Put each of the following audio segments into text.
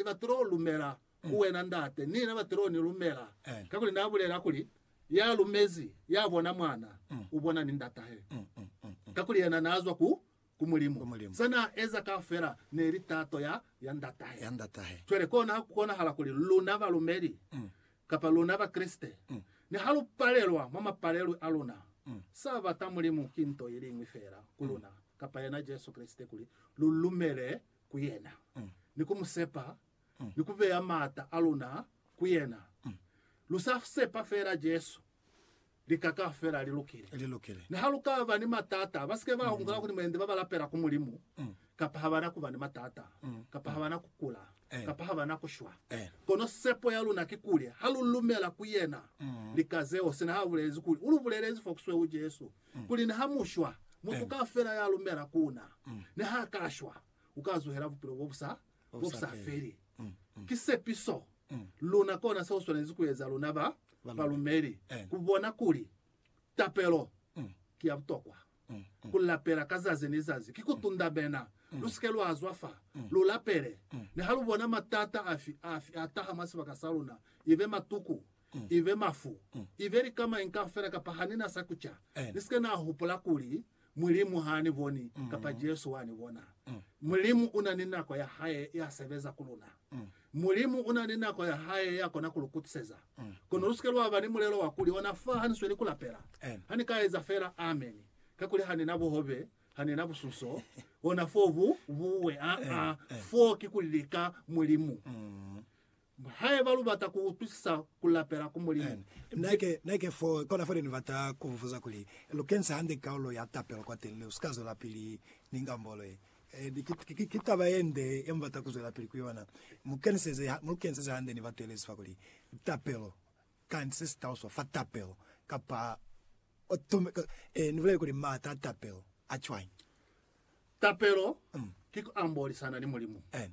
Ni batilo lumela ku wena Ndate, ni na batilo ni lumela, kakuli Na bulela kuli, Ya lumezi, ya bona Mwana, u bona ni Ndatahe. Kakuli yena na zwa ku, ku Mulimu. Za na eza kaufela ne li tato ya, ya Ndatahe. Cwale kona ha ku konahala kuli luna balumeli, kapa luna Bakreste, niha lu palelwa mwa mapalelwi a luna, sa bata Mulimu ki nto iliñwi fela ku luna, kapa yena Jesu Kreste, kuli lu lumele ku yena, ni ku mu sepa, ni ku beya maata a luna ku yena. Lu sa sepa feela Jesu, lika kaufela li lukile. Li lukile. Niha lu ka ba ni matata, ba si ke ba hungula kuli mwendi ba ba lapela ku Mulimu, kapa ha ba na ku ba ni matata, kapa ha ba na ku kula, Eh. kapa ha ba na ku shwa. Eh. Kono sepo ya luna kikuli ha lu lumela ku yena, lika zeo, sina ha bulezi kuli, U lu bulelezi fo ku sweu Jesu. kuli niha mu shwa, mutu kaufela ya lumela ku na, niha ka shwa, u ka zuhela bupilo bo bu sa, bo bu sa feli. Ki sepiso. Luna kona seo swanezi ku eza, luna ba balumeli, ku bona kuli tapelo ki ya butokwa. Ku lapela ka zazi ni zazi ki ku tundamena. Lu si ke lwa zwa fa. Lu lapele. Niha lu bona matata afi, afi a taha mwa sibaka sa luna, ibe matuku, ibe mafu, ibe lika mañi kaufela kapa ha ni na sa kuca, ni sika na hupula kuli, Mulimu ha ni boni, kapa Jesu wa ni bona. Mulimu una ni nako ya Hae ya sebeza ku luna. Mulimu una ni nako ya Hae ya kona ku lu kutiseza. Kono lu sike lwa ba ni mulelo wa kuli, Ona fa ha ni sweli ku lapela, ha ni ka eza fela Amen, kakuli ha ni na buhobe, ha ni na busunso, ona fo bu buwe. Aa, fo ki ku lika Mulimu. Haiba lubata kuutwisisa kulapela ku Mulimu, mi. Neke fo, kona fo ne nibata kubupuza kuli, Lukenisa hande kaulo ya tapelo kwateni ne usika zwelapili ni ngambolo ye. Ki, ki taba yende ye mubata kuzwelapili ku yona. Mukeniseze, mulukeniseze hande ni batu yelezi fa kuli, Tapelo, kani sesitauswa fa tapelo? Kapa, Ee, nibulele kuli maata a tapelo a cwañi? Tapelo ki kuambolisana ni Mulimu. Amen.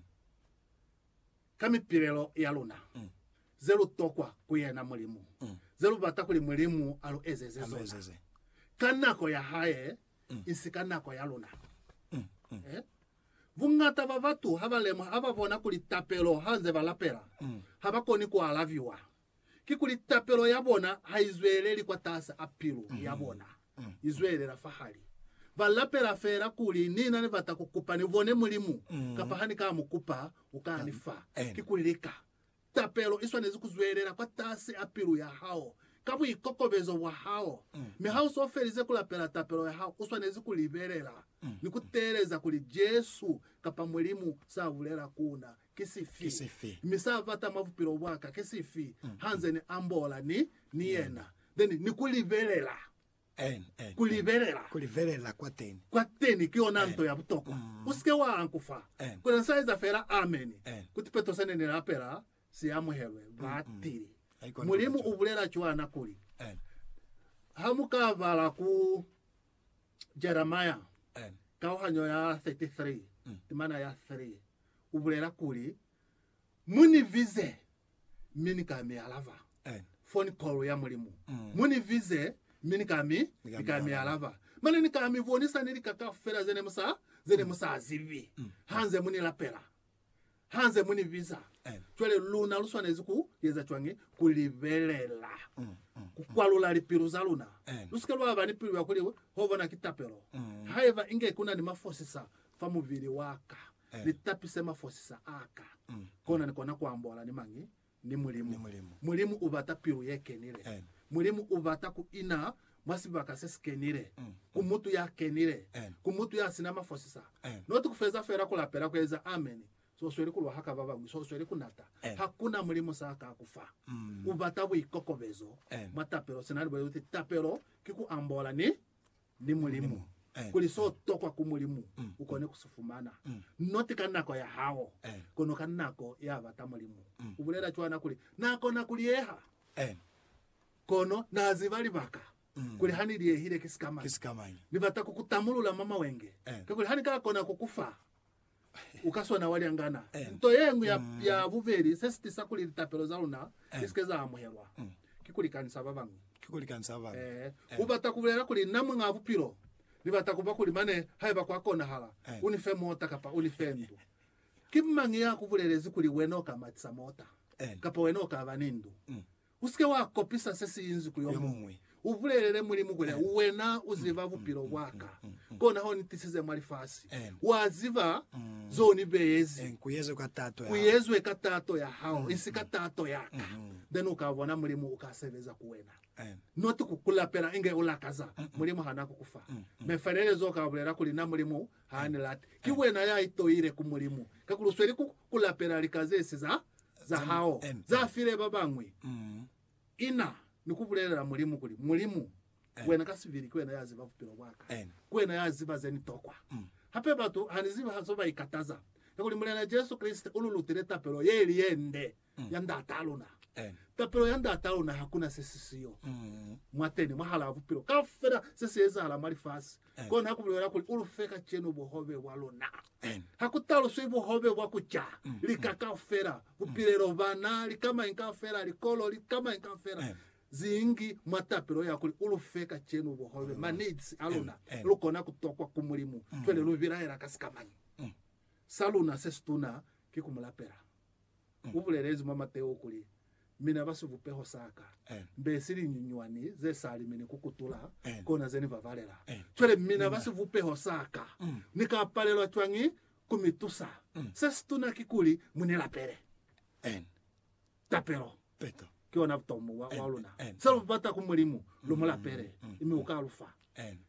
ka mipilelo ya luna ze lu tokwa ku yena Mulimu, ze lu bata kuli Mulimu a lu ezeze zona ka nako ya hae, isi ka nako ya luna. Eh? Bungata ba batu ha ba lemuha, ha ba bona kuli tapelo ha nze ba lapela, ha ba koni ku alabiwa. kikuli tapelo ya bona ha i zweleli kwataasi a pilu ya bona, i zwelela fahali. Ba lapela feela kuli, Ni na ni bata ku kupa ni bone Mulimu, kapa ha ni ka mu kupa, u ka ni fa. Kikuli lika. Tapelo i swanezi ku zwelela kwataasi a pilu ya hao, ka buikokobezo bwa hao. Mi ha u s'o felize ku lapela tapelo ya hao, u swanezi ku libelela ni ku teeleza kuli Jesu kapa Mulimu s'a bulela ku na. Ki sifi? Mi sa bata mwa bupilo bwa ka ki sifi, ha nze ni ambola ni, ni yena, then ni ku libelela. Ku libelela. Ku libelela kwa teni. Kwa teni ki yona nto ya butokwa. U sike wa ankufa. Kono sa eza fela Amen. Kuti peto se ne ni lapela si amuhelwe. Ba tili. Mulimu u bulela cwana kuli, Ha mu ka bala ku Jeremiah, kauhanyo ya 33, timana ya 3, u bulela kuli, Mu ni bize, mi ni ka mi alaba. Amen. Foni call ya Mulimu. Mm. Mu ni bize, mi ni ka mi, Ni ka ni mi ka mi alaba. alaba. Mane ni ka mi bonisa ni lika kaufela ze ne mu sa, ze ne mu sa zibi. Mm. Hanze mu ni lapela. Hanze mu ni biza. Amen. Cwale luna lu swanezi ku eza cwañi? Ku libelela. Mm. Mm. Ku kwalula lipilu za luna. Amen. Lu si ke lwa ba ni pilu ya kuli, Ho bona ki tapelo. Mm. Haiba inge ku na ni mafosisa, fa mubili wa ka, ni tapi se mafosisa a ka, kona ni kona ku ambola ni mañi? Ni Mulimu. Mulimu u bata pilu ye kenile. Mulimu u bata ku ina mwa sibaka se si kenile, ku mutu ya kenile, ku mutu ya sina mafosisa, not ku feza fela ku lapela, ku eza ameni, so u sweli ku lwa haka ba bañwi, so u sweli ku nata. Hakuna mulimu sa ka ku fa. U bata buikokobezo mwa tapelo. Sina ni bulezi kuti tapelo ki ku ambola ni ni Mulimu, kuli so tokwa ku Mulimu ukone ku si fumana, not ka nako ya hao, kono ka nako ya bata Mulimu. Ubulela cwana kuli, Na kona ku lieha, kono Na ziba libaka kuli ha ni liehile ki sikamañi. Ni bata ku ku tamulula mwa mawenge, kakuli ha ni ka kona ku ku fa u ka swana wa lyangana. Nto ye ñwi ya, ya bubeli se si tisa kuli litapelo za luna li si ke za amuhelwa, ki ku likanisa ba bañwi. Ee, u bata ku bulela kuli, Na Muñaa Bupilo, Ni bata ku ba kuli mane, haiba kwa konahala, u ni fe mota kapa u ni fe ndu. Ki mañi ya ku bulelezi kuli wena u ka matisa mota, kapa wena u ka ba ni ndu? Usike wa kopisa se si inzwi ku yo muñwi. U bulelele Mulimu kuli, Wena u ziba bupilo bwa ka, kona ho ni tisize mwa lifasi. Wa ziba zo ni beezi. Ku yezwe ka tato ya hao, isi ka tato ya ka. Then u ka bona Mulimu u ka sebeza ku wena. Not ku ku lapela inge u lakaza. Mulimu ha na ku ku fa. Mefelelezo u ka bulela kuli, Na Mulimu, Ha ni lati. Ki wena ya itoile ku Mulimu, kakuli u sweli ku, ku lapela lika ze si za, za hao, za file ba bañwi. Ina ni ku bulelela Mulimu kuli, Mulimu, wena ka sibili ki wena ya ziba bupilo bwa ka. Ki wena ya ziba ze ni tokwa. Hape batu ha ni zibi zo ba ikataza, kakuli Mulena Jesu Kreste u lu lutile tapelo ye ili ye nde. ya Ndat'a luna. Tapelo ya Ndat'a luna hakuna se si siyo mwateni, mwahalaa bupilo kaufela se si ezahala mwa lifasi. Kona ku bulela kuli, U lu fe kacenu buhobe bwa luna. Ha ku taluswi buhobe bwa ku ca, lika kaufela, bupilelo, bana, lika mañi kaufela, likolo, lika mañi kaufela zingi mwa tapelo ya kuli, U lu fe kacenu buhobe, ma needs a luna. Lu kona ku tokwa ku Mulimu cwale lu bilaela ka sikamañi. Sa luna se situna ki ku mu lapela. U bulelezi mwa Mateo kuli, Mina ba sivupeho sa Ka, mbe si linyunyuani ze sa limeni ku kutula, kona ze Ni ba balela. Cwale, mina ba sivupeho sa Ka, Ni ka palelwa cwañi ku mi tusa? Se situna kikuli mu ni lapele tapelo. Peto. Ki ona butomo bwa luna. Se lu bata ku Mulimu, lu mu lapele, mi u ka lu fa.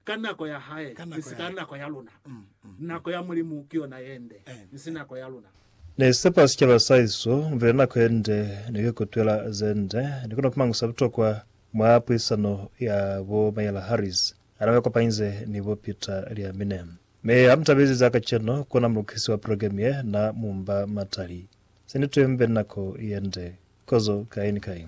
Ka nako ya Hae, mi si ka nako ya luna. Nako ya Mulimu ki yona ye nde, mi si nako ya luna. Ni sepa sicaba sa iso mvile nako ye nde ni ku ikutwela ze nde. Ni kona ku mangusa butokwa mwa puisano ya bo Mayela Harris ha na ba kopanyize ni bo Peter Liamine. Mi ha mu tabezi za kacenu, ku na mulukisi wa program ye na mu mba matali. Seni tuembe nako yende kozo kai ni kai.